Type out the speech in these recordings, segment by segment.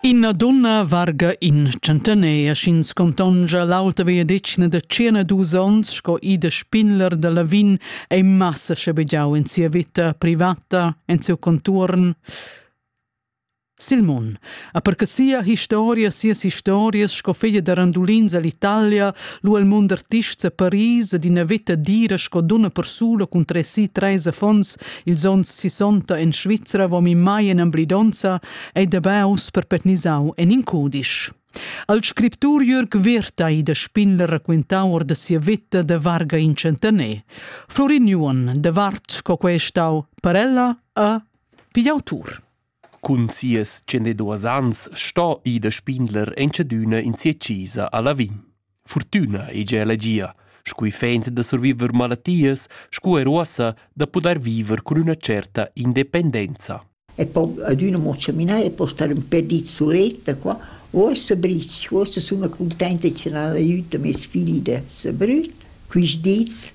Ina donna varga in centenair sch'ins contongia l'auta vegliadetgna da tschena dus onns sco Ida Spinler da Lavin è massa schabegiau en sia vita privata, en siu conturn. Silmon ha perche sia historia, sias historias sco figlia da randulins all'Italia, lu al mund artists a Paris ed ina veta dira sco dunna persula cun tressi treis affons Ils onns sissonta en Svizra vom in mai en emblidonza ei da baus per petnisau en in cudisch. Al scriptur Jürg Wirtai da Spindler raquintau or da sia vita da varga in centener. Florin Juon, da Vart co quei stau per ella a pigl autur. Cun sias tschendeduas ans sto Ida Spindler entschadüna in sia chisa a Lavin. Fortüna hegia elegia, scu effent da surviver malatias scu er uossa da pudair viver cun üna certa independenza. E poi adüna mo chaminare e poi stare un pè di suletta qua. O Sabric, forse sono contenta e ce n'ha l'aiuto mes figli da Sabrut. Quist dis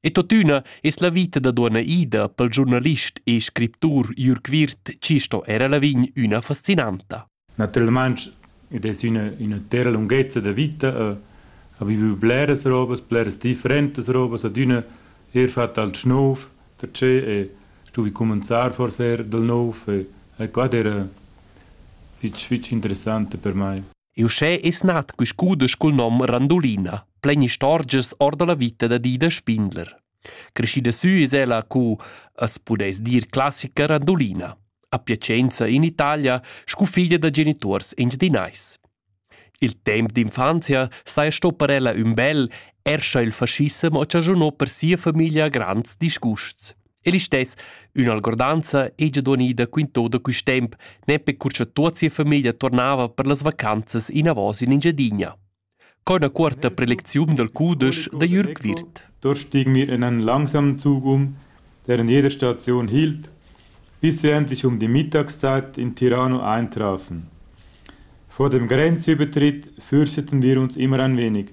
E totüna es la vita da duonna Ida pel giurnalist e scriptur Jürg Wirth chi sto era Lavin üna fascinanta. Naturalmaing id es üna üna terra lunghezza da vita a a vivu bleras robas, bleras differentas robas, ad üna eir fatta al schnouf, da ce e stuvi cominciar forse er dal nouv e e qua era fich fich interessante per mai. Uschè es nat quist cudesch cul nom Randulina, plain istorgias or da la vita da Dida Spindler. Creschida sü es ella cu as pudess dir classica randulina, a Piacenza in Italia scu figlia da genituors engiadinais. Il temp d'infanzia saja sto per ella ün bel, erscha il faschissem o chaschunò per sia famiglia grands disgusts. E listess ün'algordanza hegia duonida quintò da quist temp, nempe cur cha tuot sia famiglia tornava per las vacanzas inavos in Engiadina. Co üna cuorta prelecziun dal cudesch da Jürg Wirth. Dort stiegen wir in einen langsamen Zug um, der in jeder Station hielt, bis wir endlich um die Mittagszeit in Tirano eintrafen. Vor dem Grenzübertritt fürchteten wir uns immer ein wenig,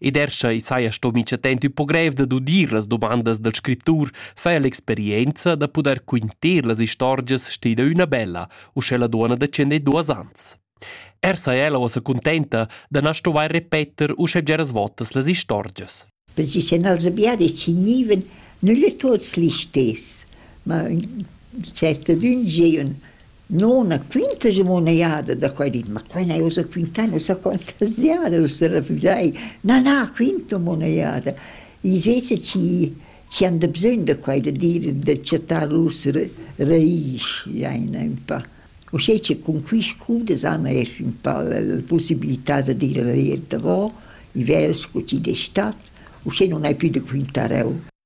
Ed er sche i saja sto mica temp tü po grev dad udir las dumandas dal scriptur, saja l'experienza da pudair quinter las istorgias stida üna bella, uschè la duonna da tschender duos ans. Er saja ella uossa contenta da na stovair repeter uschè bgeras votas las istorgias. Perché se nels abbiadi signiven nülle tots listess, ma in certa dun giun No na quintaja mo üna jada da quai di, ma quai n'haja ussa quintà nossa fantasiada ussa da vulair. Na, na, quinta mo üna jada. I vesa chi chi han da bsögn da quai da dir e da chattar lur raisch jaina ün pa. Uschè che cun quist cours d'esam esch ün pa la la pussibilità da dir la verità vo, i vers scu chi d'es stat, uschè nun hai pü da quintar eu.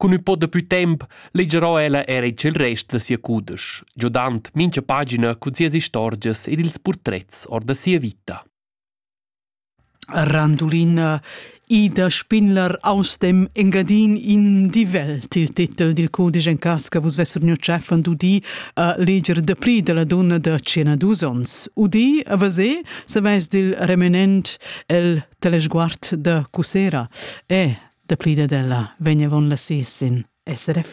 Cun ün po dapü temp legerò ella era il tschel rest da sia cudesch, giodand mincha pagina cun sias istorgias ed ils purtrets or da sia vita. Randulina Ida Spinler aus dem Engadin in die Welt, il titel dil cudisch en cas che vus vessur gnü chef an d'udì a leger dapli dalla donna da 102 ons. Udì, a vasé, saveis dil remanent el telesguard da Cusera. E, Dapli dad ella vegn avon la sis sin SRF.